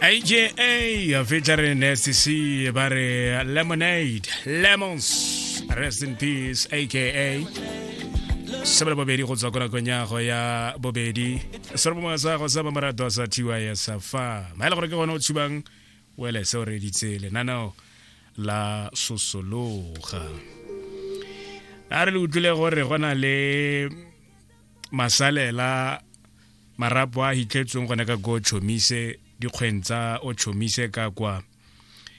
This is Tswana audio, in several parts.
AJA featuring SCC ba re Lemonade Lemons Rest in Peace aka sebele bobedi go tswa ko nakong ya go ya bobedi se re bomwa sa go sa ba morato sa TY sa fa ma ile gore ke gone o tshubang wele se o reditse lenaneo la sosologa a re le utlwile gore go na le masalela marapo a hitlhetsweng gone ka ko chomise dikgweng tsa o chomise ka kwa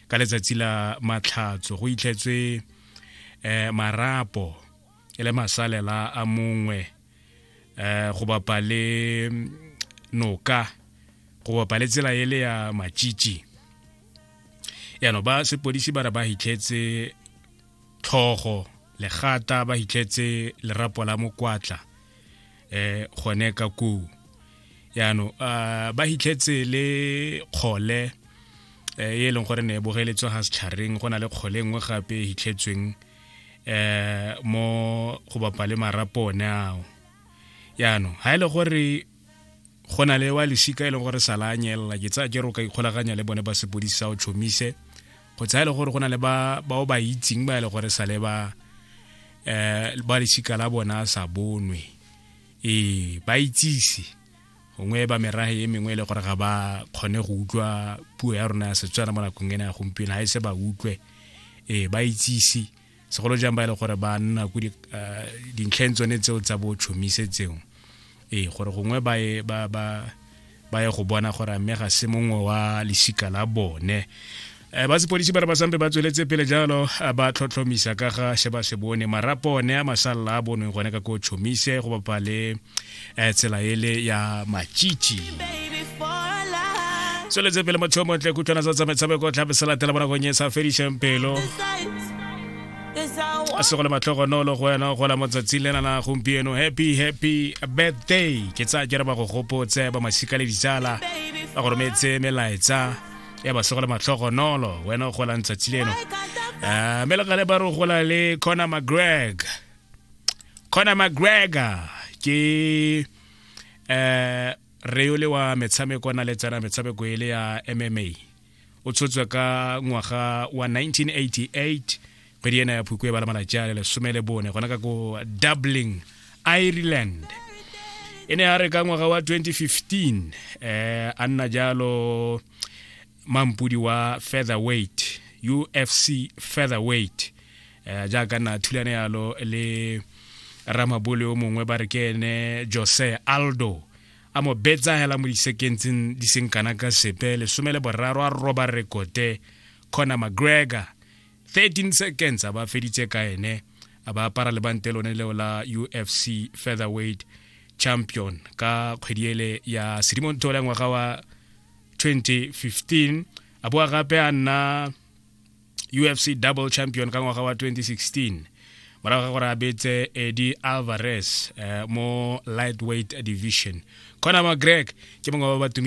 ka letsatsi la matlhatso go itlhetswe eh marapo e le masalela a mongwe eh go bapa le noka go bapa le tsela e le ya matšitši yano ba sepodisi ba re ba hitlhetse tlhogo legata ba hitlhetse lerapo la mokwatla eh gone ka koo yaano uh, ba hitlhetse le kgole eh, e e leng gore ne e bogeletswe ga setšhareng go na le kgole e nngwe gape e hitlhetsweng eh mo go bapa le marapo one ao yaanong ga e le gore go na le wa lesika e leng gore sa la a nyelela ke tsaya jero ka ikgolaganya le bone ba sepodisi sa o tšhomise go tsaya e le gore go na le ba bao ba itseng ba e le gore sa le ba um ba lesika la bona sa bonwe ee ba itsise gongwe ba merage e mengwe e le gore ga ba kgone go utlwa puo ya rona ya setswana mo nakong ena ya gompieno ga e se ba utlwe ee ba itsise segolo jang ba e le gore ba nna ko ah, dintlheng tsone tseo tsa bo tšhomise tseo ee gore gongwe ba ye ba ba ba ye go bona gore mme ga se mongwe wa lesika la bone um ba sepodisi ba re ba sampe ba tsweletse pele jalo eh, ba tlhotlhomisa ka ga se ba se bone marapo one a masalela a bonweng gone ka ko tšhomise go bapa le eh, tsela ele ya machichi tsweletse pele motho yo montle kutlwana tsa tsamaetshameko tlhape se latela mo nakong e sa fediseng pelo a se go le matlhogonolo go wena gola mo tsatsing le nana gompieno happy happy birthday ke tsaya ke re ba go gopotse ba masika le ditsala ba go rometse melaetsa ya ba se go le matlhogonolo wena o golang tsatsi leno um mme le gale ba re o gola le connor mcgreg Conor McGregor ke eh reole wa metshameko na le tsena metshameko ele ya MMA o tshotswe ka ngwaga wa 1988 kgwedi ena ya phukwe ba le malatsi a le lesome le bone gona ka ko dublin ireland e ne ya re ka ngwaga wa 2015 eh a nna jalo mampudi wa featherweight ufc featherweight eh, jaaka na thulane yalo le ramabole o mongwe ba re ke ene jose aldo a mo betsa hela mo disekentseng di seng kana ka sepe lesome le boraro a roba rekote conor mcgregor 13 seconds a ba feditse ka ene a ba apara lebante lone leo la ufc featherweight champion ka kgwedi ele ya sedimontho la ngwaga wa 2015 a boa gape a nna ufc double champion ka ngwaga wa 2016 morago ga gore a betse edi alvarez eh, mo lightweight division conor mcgreg ke mongwe ba ba tumile